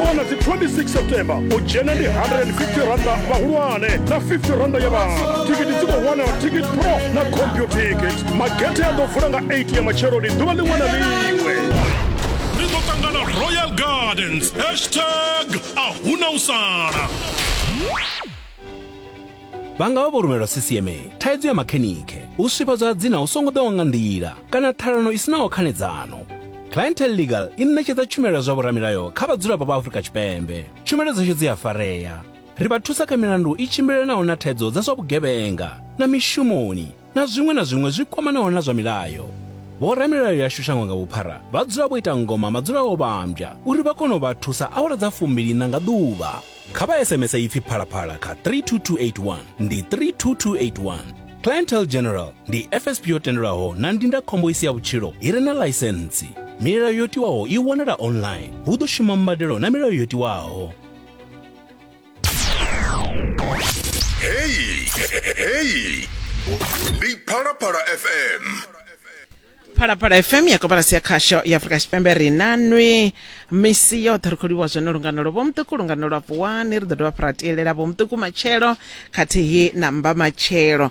wana dzi 26 september u dzhena ndi 150 randa vhahulwane na 50 randa ya vhana thikiti dzi khou wanala ticket pro na computicket magethe a ḓo vula nga 8 ya matsheloni ḓuvha ḽiṅwe na ḽiṅwe ri ḓo ṱangana royal gardens hashtag a huna u sala Vha nga vha vho rumelwa sisieme, thaidzo ya makhenikhe, u swifhadzwa ha dzina hu songo ḓaho nga nḓila kana ṱhalano i si naho khanedzano. Clientele Legal i ṋetshedza tshumelo ya zwa vhoramilayo kha vhadzulapo vha Afrika Tshipembe. Tshumelo dzashu dzi a farea. Ri vha thusa kha milandu i tshimbilelanaho na thaidzo dza zwa vhugevhenga na mishumoni. na zwiṅwe na zwiṅwe zwi kwamanaho na zwa milayo. Vhoramilayo yashu shango nga vhuphara vha dzula vho ita ngoma madzula o vhambya uri vha kone u vha thusa awara dza fumbiliṋa nga ḓuvha. Kha vha SMS ipfi phalaphala kha 32281 ndi 32281. Clientele General ndi FSP yo tendelwaho na ndindakhombo i si ya vhutshilo i re na ḽaisentsi. Milayo yo tiwaho i wanala online. Hu ḓo shuma mbadelo na milayo yo tiwaho. heyi heyi ndi phalaphala fm phalaphala fm ya kobalasi ya khasho ya afurika tshipembe ri na nwi misi yoṱhe ri khou livhuwa zwone lungano lwo vhomuṱuku lungano lwa vuwani ri ḓo dovha fha ra tielela vhomuṱuku matshelo khathihi na mba matshelo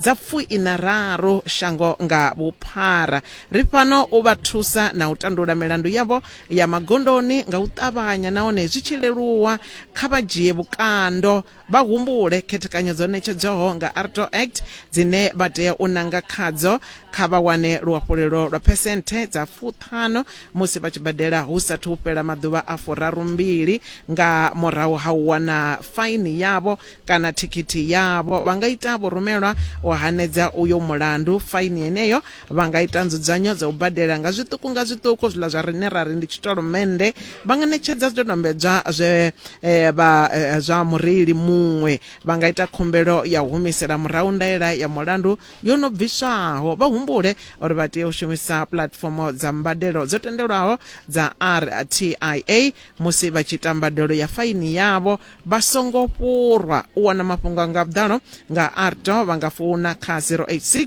dza pfuiṋa raru shango nga vhuphara. Ri fhano u vha thusa na u tandula milandu yavho ya magondoni nga u ṱavhanya nahone zwi tshi leluwa. Kha vha dzhie vhukando vha humbule khethekanyo dzo ṋetshedzwaho nga ARTO Act dzine vha tea u nanga khadzo. Kha vha wane luhafhulelo lwa phesenthe dza fuṱhanu musi vha tshi badela hu sathu fhela maḓuvha a furarumbili nga murahu ha u wana faini yavho kana thikhithi yavho vha nga ita vhurumelwa u hanedza uyo mulandu faini yeneyo vha nga ita nzudzanyo dza u badela nga zwiṱuku nga zwiṱuku zwiḽa zwa rine ra ri ndi tshitolomennde vha nga ṋetshedza zwidodombedzwa zwe eh, vha eh, zwa mureili muṅwe vha nga ita khumbelo ya u humisela murahu ndaela ya mulandu yo no bviswaho vha humbule uri vha tea u shumisa puḽatifomo dza mbadelo dzo tendelwaho dza rtia musi vha tshi ita mbadelo ya faini yavho vha songo fhurwa u wana mafhungo nga vhuḓalo nga arto vha nga founa kha 086